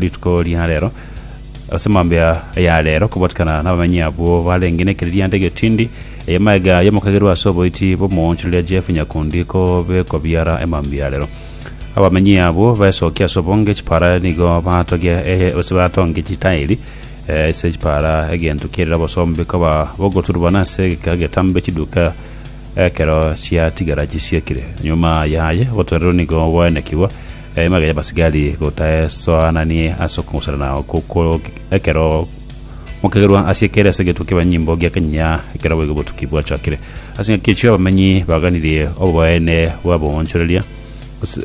Rituko ria rero, ase mambia ya rero, kobwatikana n'abamenyi abwo barenge nekereria ande getindi, ey'amaega y'omokagerwa ase oboiti bw'omoonchoreria Jeff Nyakundi ko bekobiara emambia ya rero. Abamenyi abwo baesokia ase obonge chipara nigo batogia eh, ase batonge chitairi eh, ase chipara egento kiarire obosombe koba bogoturubana ase egeka getambe chiduka ekero chiatigara chisiekire. Nyuma yaye obotorero nigo bwaenekigwa Embaga y'abasigari gotaesoananie ase okong'userana okwo ko ekero mokegerwa ase ekere ase egetuo ki'ebanyimbo gi'ekanyinya ekero boigo obotuki bwachakire. Ase engaki echio abamenyi baganirie oboene bw'aboonchoreria gose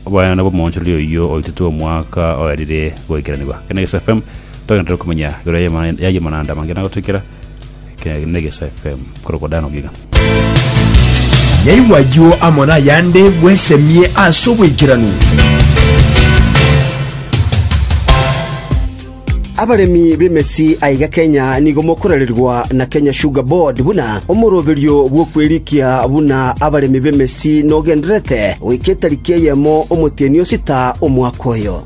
oboene bw'omoonchoreria oyio oitetwe omwaka oerire goikeranigwa. Kene Gesa FM togenderere komanya igoro y'amananda amange na gotoikera kene Gesa FM korokwa Dan Ogiga. Yaigwa ayio amo nayande, bwesemie ase oboikeranu. Abaremi b'emesi aiga Kenya nigo mokorererwa na Kenya Sugar Board buna omoroberio bw'okwerikia buna abaremi b'emesi nogendererete goika etariki eyemo omotienyi o sita omwaka oyo.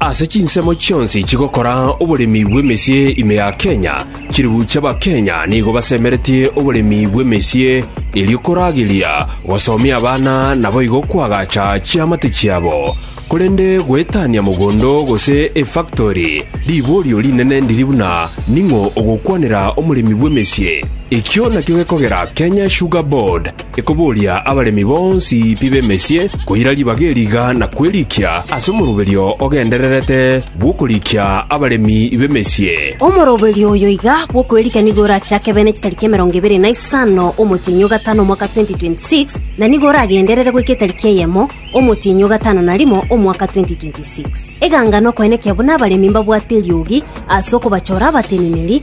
Ase chinsemo chionsi chigokora oboremi bw'emesie ime ya Kenya, chilifu chi'Abakenya nigo basemeretie oboremi bw'emesie erio korageria gosomia abana naboigo koagacha chiamate chiabo. Korende goetania mogondo gose efactori riborio rinene ndiri buna ning'o ogokwanera omoremi bw'emesie. Ekio nakio gekogera Kenya Sugar Board, ekoboria abaremi bonsi pi b'emesie koira ribaga eriga na kwerikia ase omoroberio ogendererete bw'okorikia abaremi b'emesie. Omoroberio oyo iga bw'okwerikia nigo orache akebe ne chitariki emerongo ebere na isano omotienyi o gatano omwaka 2026, na nigo oragenderere goika etariki eyemo omotienyi o gatano na rimo omwaka 2026. Eganga nokoenekia buna abaremi mbabwate eriogi ase okobachora abateneneri,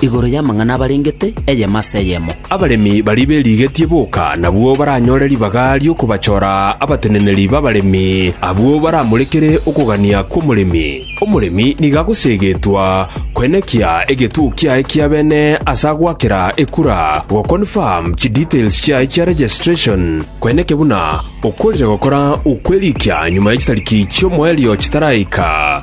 Igoro y'amang'ana abarengete, eyemo ase eyemo. Abaremi baria berigetie boka nabwo baranyore ribaga ri'okobachora abateneneri b'abaremi, abwo baramorekere okogania kw'omoremi. Omoremi nigo agoseegetwa koenekia egetuo kiaye kia bene ase agoakera ekura, goconfirm chidetails chiaye chia registration, koenekia buna okworire gokora okwerikia nyuma ye chitariki chi'omoerio chitaraika.